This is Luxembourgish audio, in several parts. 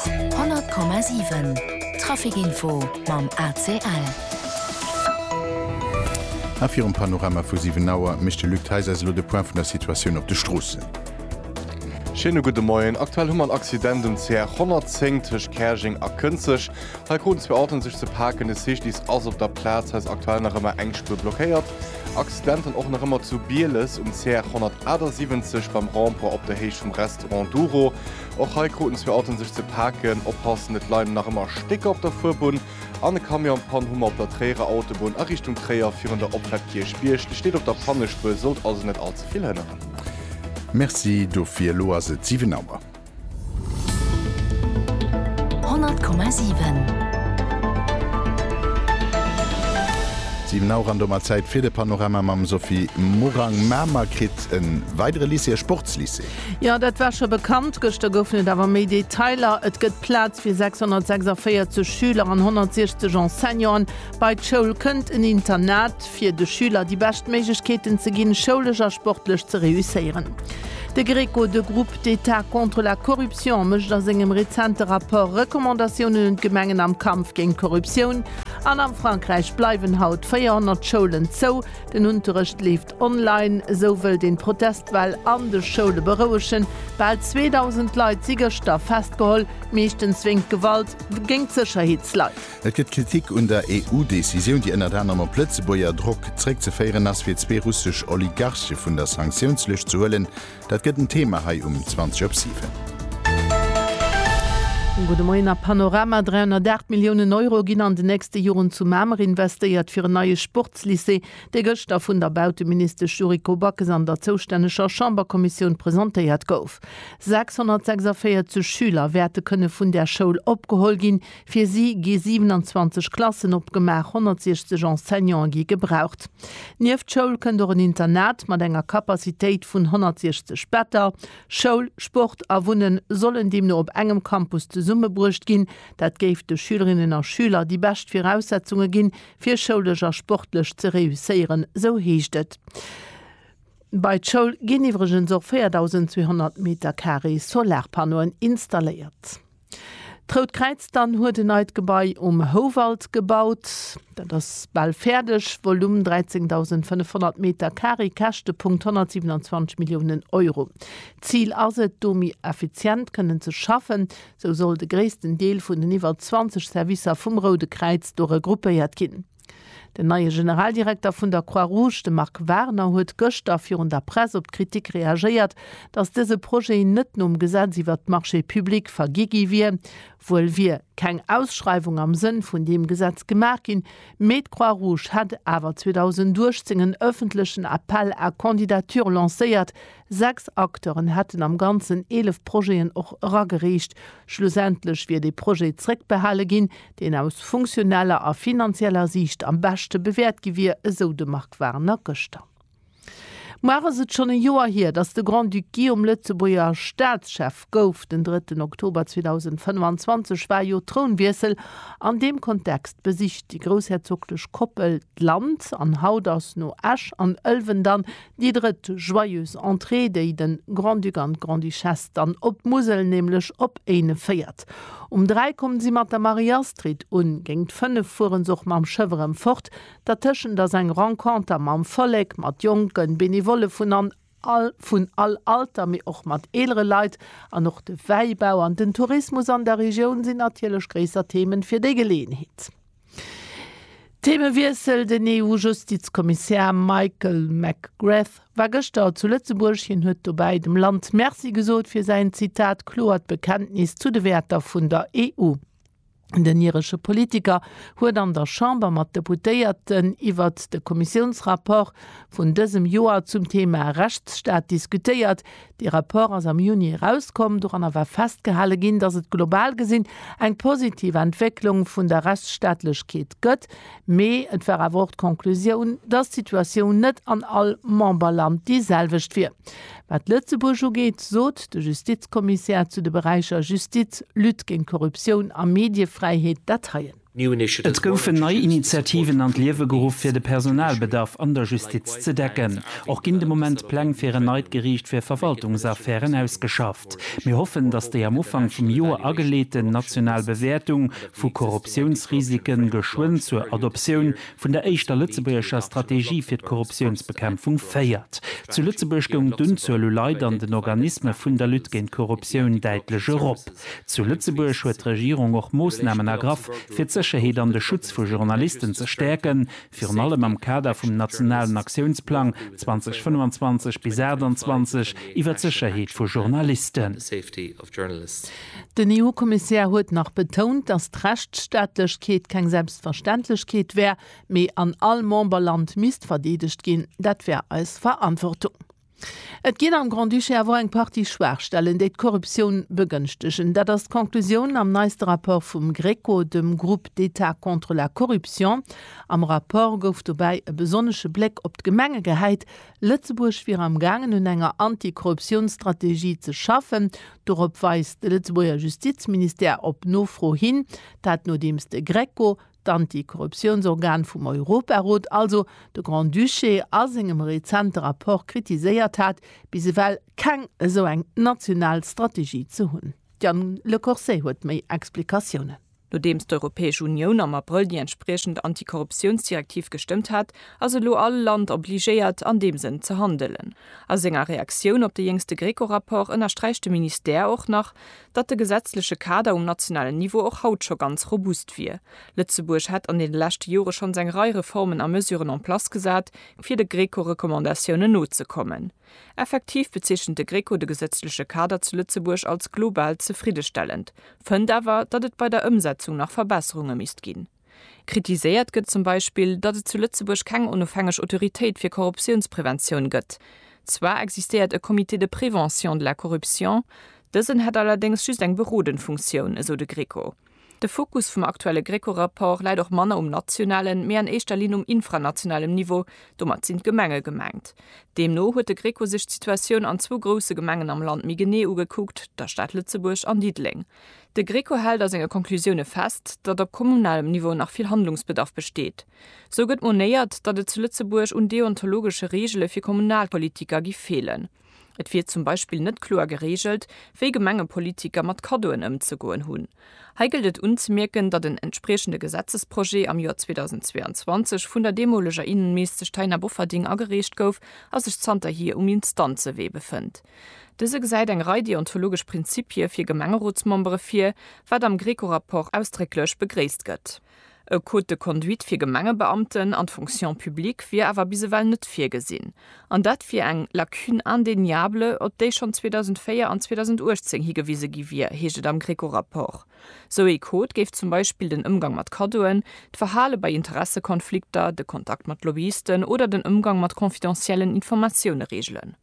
100,7 Trafic Info mam ACL. A virum Panorama vu 7 Auer mécht de Luc Theis eis elo de Point vun der Situatioun op de Stroossen. Schéine gudde Moien. Aktuell hu mer en Accident um CR 110 tëscht Käerjeng a Kënzeg. Hei kruten zwee Autoen sech ze paken, de Cyclist ass op der Plaz. Hei ass aktuell nach ëmmer eng Spuer blockéiert. Accidenten och nach ëmmer zu Bieles um CR 178 beim Rond-point op der Héicht vum Restaurant. Enduro, Och hei kruten zwee Autoen sech ze paken. Oppassen, et leien nach ëmmer Stécker op der Fuerbunn an e Camion an Pann. Hummer op der Tréierer Autobunn a Richtung Tréier virun der Opfahrt Kierchbierg. De steet op der Pannespur, sollt also net all ze vill hënneren. Merci dofir. Elo ass et 7 Auer. 7 Auer an domat Zäit fir de Panorama mam Sophie Morang. Mamer kritt e weidere Lycée, e Sportslycée. Jo, dat war scho bekannt. Gëschter goufen et awer méi Detailer, Et gëtt Plaz fir 646 Schüler an 160 Enseignanten. Bei d'Schoul kënnt en Internat, fir de Schüler déi bescht Méiglechkeeten ze ginn, schoulesch a sportlech ze reusséieren. De Greco, de Groupe d'État contre la corruption, mécht a sengem rezente Rapport Recommandatiounen un d'Gemengen am Kampf géint d'Korruptioun. An am Frankräich bleiwen haut 400 Schoulen zou, den Unterrecht leeft Online, Esou wëllt een d'Protestwell an de Schoule berouegen. Bal 2.000 Leit si gëschter festgeholl, meeschtens wéingt Gewalt géint d'Sécherheetsleit. Et gëtt Kritik un der EU-Decisioun, déi ënnert anerem op Lëtzebuerger Drock zréckzeféieren ass, fir zwee russesch Oligarche vun der Sanktiounslëscht ze huelen. Dat gëtt en Thema hei um 20 op 7. Gudde Moien a Panorama, 308 Milliounen Euro ginn an den nächste Joren zu Mamer investéiert fir en neie Sportslycée. dee gëschter vun der Bauteministesch Yuriko Backes an der zoustänneger Chamberkommissioun presentéiert gouf. 646 Schüler wäerte kënne vun där Schoul opgeholl ginn. Fir si gi 27 Klassen opgemaach, 160 Enseignante gi gebraucht. Nieft Schoul kënnt och en Internat mat enger Capacitéit vun 160 Better. Schoul, Sport a Wunnen sollen deemno op engem Campus zesummebruecht ginn. Dat géif de Schülerinnen a Schüler déi bescht Viraussetzunge ginn, fir schoulesch a sportlech ze reusséieren, sou heescht et. Bei d'Schoul ginn iwwregens och 4.200 Metercarré Solarpannoen installéiert. D'Rout Kräiz dann huet en neit Gebai um Houwald gebaut. Dat ass bal fäerdeg, Volume 13.500 Metercarré, Käschtepunkt 127 Milliounen Euro. D'Zil ass et, do méi effizient kënnen ze schaffen, Sou soll de gréissten Deel vun den iwwer 20 Servicer vum Roude Kräiz do regroupéiert ginn. Den neie Generaldirekter vun der Croix-Rouge, de Marc Warner, huet gëschter virun der Press op d'Kritik reagéiert, datt dëse Projet net nom Gesetz iwwert d'Marchés publics vergi gi wier. Wuel wier keng Ausschreiwung am Sënn vun deem Gesetz gemaach ginn, mee d'Croix-Rouge hätt awer 2018 en ëffentlechen Appel à candidatures lancéiert, Sechs Acteuren hätten am Ganzen 11 Projeten och eragereecht. Schlussendlech wier dee Projet zréckbehale ginn, deen aus funktioneller a finanzieller Siicht am beschte bewäert gi wier, esou de Marc Warner gëschter. Muer ass et schonn e Joer hier, datt de Grand-Duc Guillaume Lëtzebuerger Staatschef gouf. Den drëtten Oktober 2025 war jo Trounwiessel. An deem Kontext besicht déi groussherzoglech Koppel d'Land an haut ass no Esch an Ëlwen dann Déi drëtt Joyeuse Entrée, déi de Grand-Duc an d'Grande-Duchesse dann op d'Musel, nämlech op Éinen féiert. Um dräi kommen si mat der Marie-Astrid un, géingt fënnef fueren se och mam Schëff erëm fort. Dertëschent ass eng Renconter mam Vollek, mat Jonken, Benevolle vun an all vun all Alter, mee och mat eelere Leit. An och de Wäibau an den Tourismus an der Regioun sinn natierlech gréisser Themen fir déi Geleeënheet. Theemewiessel, Den EU-Justizkommissär Michael McGrath war gëschter zu Lëtzebuerg. Hien huet dobäi dem Land Merci gesot fir säin, Zitat, kloert Bekenntnis zu de Wäerter vun der EU. Den iresche Politiker huet an der Chamber mat Deputéierten iwwert de Kommissiounsrapport vun dësem Joer zum Theema Rechtsstaat diskutéiert, Dee Rapport ass am Juni erauskomm. Doranner war festgehale ginn, datt et global gesinn eng positiv Entwécklung vun der Rechtsstaatlechkeet gëtt, mee et war awer och d'Conclusioun, datt d'Situatioun net an all Memberland déi selwecht wier. Wat Lëtzebuerg ugeet, sot de Justizkommissär zu de Beräicher Justiz, Lutte géint d'Korruptioun a Mediefräiheet dat heien. Et goufen nei Initiativen an d'Liewe geruff, fir de Personalbedarf an der Justiz ze decken. Och ginn de Moment Pläng fir en neit Geriicht fir Verwaltungsaffären ausgeschafft. Mir hoffen, datt déi am Ufank vum Joer ageleeten national Bewäertung vu Korruptiounsrisike geschwënn zur Adoptioun vun der éischter lëtzebuergescher Strategie fir d'Korruptiounsbekämpfung féiert. Zu Lëtzebuerg goung d'Unzuel u Leit an den Organisme vun der Lutte géint d'Korruptioun däitlech erop. Zu Lëtzebuerg huet d'Regierung och Moossnamen ergraff, fir d'Sécherheet an de Schutz vu Journalisten ze stäerken, virun allem am Kader vum nationalen Aktiounsplang 2025 bis 28 iwwer d'Sécherheet vu Journalisten. Den EU-Kommissär huet nach betount, datt d'Rechtsstaatlechkeet keng Selbstverständlechkeet wär, mee an all Memberland misst verdeedegt ginn. Dat wär eis Verantwortung. Et ginn am Grand-Duché awer och eng Partie Schwaachstellen, déi d'Korruptioun begënschtegen. Dat ass d'Conclusioun am neiste Rapport vum GRECO, dem Groupe d'État contre la corruption. Am Rapport gouf dobäi e besonnesche Bléck op d'Gemenge gehäit. Lëtzebuerg wier am gaangen un enger Anti-Korruptiounsstrategie ze schaffen. Dorop weist de Lëtzebuerger Justizministère op Nofro hin. Dat nodeems de GRECO d'Anti-Korruptiounsorgan vum Europarot, also de Grand-Duché, a sengem rezente Rapport kritiséiert hat, bis ewell keng esou eng national Strategie ze hunn. D'Yann Le Corset huet méi Explikatiounen. Nodeems d'Europäesch Unioun am Abrëll déi entspriechend Anti-Korruptiounsdirektiv gestëmmt hat, ass elo all Land obligéiert, an deem Sënn ze handelen. A senger Reaktioun op de jéngste GRECO-Rapport ënnersträicht de Ministère och nach, datt de gesetzleche Kader um nationalen Niveau och haut scho ganz robust wier. Lëtzebuerg hätt an deene leschte Jore schonns eng Rei Reformen a Mesuren en place gesat, fir de Greco-Recommandatiounen nozekommen. Effektiv bezeechent de Greco de gesetzleche Kader zu Lëtzebuerg als global zefriddestellend, fënnt awer, datt et bei der Ëmsetzung nach Verbesserunge misst ginn. Kritiséiert gëtt zum Beispill, datt et zu Lëtzebuerg keng onofhängeg Autoritéit fir Korruptiounspreventioun gëtt. Zwar existéiert e Comité de prévention de la corruption, dësen hätt allerdéngs just eng berodend Funktioun, esou de Greco. De Fokus vum aktuelle Greco-Rapport läit och manner um nationalen, mee an éischter Linn um infranationalem Niveau, domat sinn d'Gemenge gemengt. Deemno huet de Greco sech d'Situatioun an zwou grousse Gemengen am Land méi genee ugekuckt, der Stad Lëtzebuerg an Diddeleng. De Greco hält a senge Conclusioune fest, datt op kommunalem Niveau nach vill Handlungsbedarf besteet. Sou gëtt monéiert, datt et zu Lëtzebuerg un deontologesche Reegele fir Kommunalpolitiker gi feelen. Et wier zum Beispill net kloer gereegelt, wéi Gemengepolitiker mat Kaddoen ëmzegoen hunn. Hei gëllt et unzemierken, datt en entspriechende Gesetzesprojet am Joer 2022 vun der deemoleger Innenministesch Taina Bofferding agereecht gouf a sech zanterhier um Instanzewee befënnt. Dëse gesäit eng Rei deontologesch Prinzippie fir Gemengerotsmembere vir, wat am Greco-Rapport ausdrécklech begréisst gëtt. E Code de conduite fir Gemengebeamten an d'Fonction publique wier awer bis ewell net virgesinn. An dat wier eng Lacune indéniable, op déi schonn 2004 an 2018 higewise gi wier, heescht et am Greco-Rapport. Sou ee Code géif zum Beispill den Ëmgang mat Kaddoen, d'Verhale bei Interessekonflikter, de Kontakt mat Lobbyisten oder den Ëmgang mat confidentiellen Informatioune reegelen.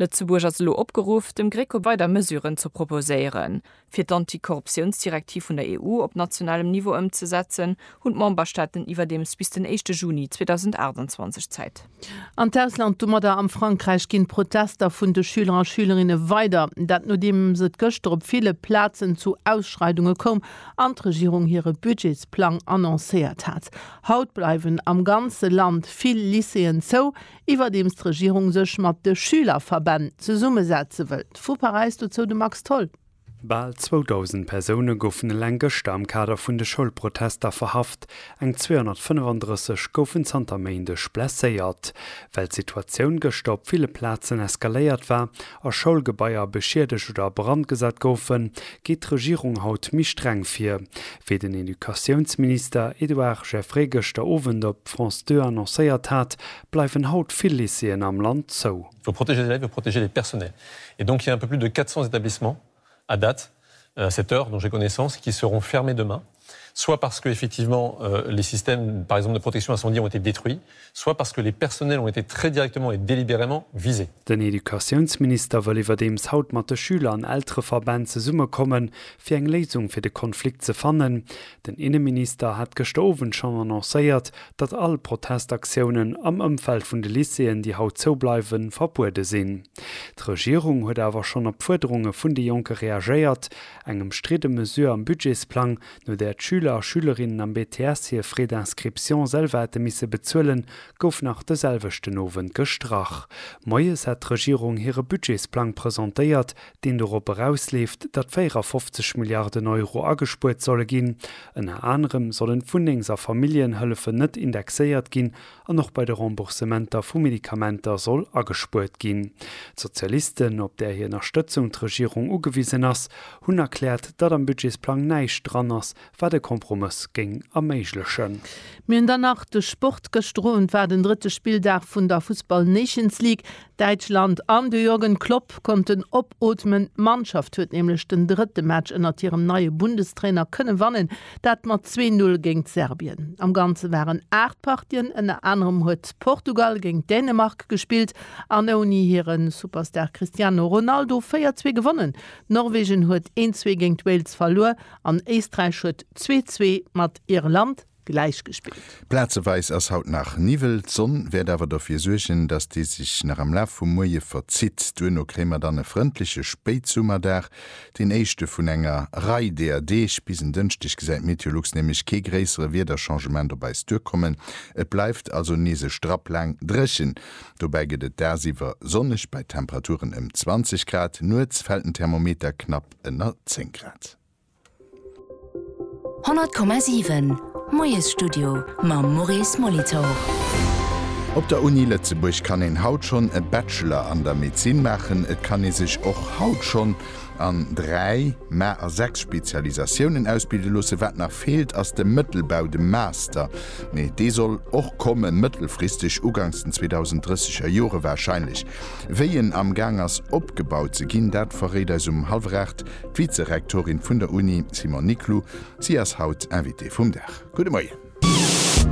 Lëtzebuerg ass elo opgeruff, dem GRECO weider Mesuren ze proposéieren. Fir d'Antikorruptiounsdirektiv vun der EU op nationalem Niveau ëmzesetzen, hunn d'Memberstaaten iwwerdeems bis den éischte Juni 2028 Zäit. An d'Ausland, domadder am Frankräich, ginn d'Protester vun de Schüler a Schülerinne weider. Dat nodeems et gëschter op ville Plazen zu Ausschreidunge koum an d'Regierung hire Budgetsplang annoncéiert hat. Haut bleiwen am ganze Land vill Lycéeën zou, Iwwerdeems d'Regierung sech mat de Schülerverbänn zesummesetze wëllt. Vu Paräis dozou de Max Tholl. Bal 2.000 Persoune goufen eleng gëschter am Kader vun de Schoulprotester verhaft, eng 235 goufen zanter Méindeg blesséiert. Well d'Situatioun gëschter op ville Plazen eskaléiert war, a Schoulgebaier beschiedegt oder a Brand gesat goufen, geet d'Regierung haut méi streng vir, wéi den Educatiounsminister Edouard Geffray gëschter Owend op France 2 annoncéiert hat, bleiwen haut vill Lycéeën am Land zou. Pour protéger les élèves et protéger les personnels et donc il y a un peu plus de 400 établissements à date, à cette heure dont j'ai connaissance, et qui seront fermées demain, soit parce que, effectivement, les systèmes, par exemple, de protection incendie ont été détruits, soit parce que les personnels ont été très directement et délibérément visés. Den Educatiounsminister wëll iwwerdeems haut mat de Schüler an Eltereverbänn zesummekommen, fir eng Léisung fir de Konflikt ze fannen, Den Inneminister hat gëschter Owend schonn annoncéiert, datt all Protestaktiounen am Ëmfeld vun de Lycéeën, déi haut zou bleiwen, verbuede sinn. D'Regierung huet awer schonn op d'Fuerderunge vun de Jonke reagéiert, eng ëmstridde Mesure am Budgetsplang, no där d'Schüler a Schülerinnen am BTS hir Frais d'inscription selwer hätte misse bezuelen, gouf nach de selwechten Owend gestrach. Moies hat d'Regierung hire Budgetsplang presentéiert, deen dorop erausleeft, datt 54 Milliarden Euro agespuert solle ginn. Ënner anerem sollen d'Wunnengs a Familljenhëllefen net indexéiert ginn an och bei de Remboursementer vu Medikamenter soll agespuert ginn. D'Sozialisten, op där hir Ënnerstëtzung d'Regierung ugewisen ass, hunn erkläert, datt am Budgetsplang näischt dran ass, wat e Kompromëss géing erméiglechen. Mir hunn dann nach de Sport. Gëschter Owend war den drëtte Spilldag vun der Fussball Nations League. Däitschland an de Jürgen Klopp konnten opootmen. D'Mannschaft huet nämlech den drëtte Match ënnert hirem neie Bundestrainer kënne wannen, dat mat zwee Null géint Serbien. Am Ganze waren aacht Partien, ënner anerem huet Portugal géint Dänemark gespillt an ouni hire Superstar Cristiano Ronaldo véier zwee gewonnen. Norwegen huet een zwee géint Wales verluer an Éisträich huet zwee zwee mat Irland. gläichgespillt. Plazeweis ass haut nach Niwwel, d'Sonn wäert awer derfir suergen, dass dee sech nach am Laf vum Moie verzitt. Duerno kréie mer dann e frëndleche Spéitsummerdag, deen éischte vun enger Rei deeër Deeg. Bis en Dënschdeg gesäit d'Meteolux nämlech kee gréissere Wiederchangement op eis duerkommen. Et bleift also nees e Strapp laang dréchen. Dobäi gëtt et dagsiwwer sonneg bei Temperaturen ëm 20 Grad, nuets fält den Thermometer knapp ënner 10 Grad. 100,7 Moiesstudio mam Maurice Molitor. Op der Uni Lëtzebuerg kann een haut schonn e Bachelor an der Medezin maachen. Et kann ee sech och haut schonn an dräi, mä a sechs Spezialisatiounen ausbilde loossen. Wat nach feelt, ass de Mëttelbau, de Master, mee dee soll och kommen, mëttelfristeg, ugangs den 2030 er Jore warscheinlech. Wéi en amgaang ass opgebaut ze ginn, dat verréit eis um hallwer aacht D'Vizerektorin vun der Uni, Simone Niclou, si ass haut Invitée vum Dag. Gudde Moien.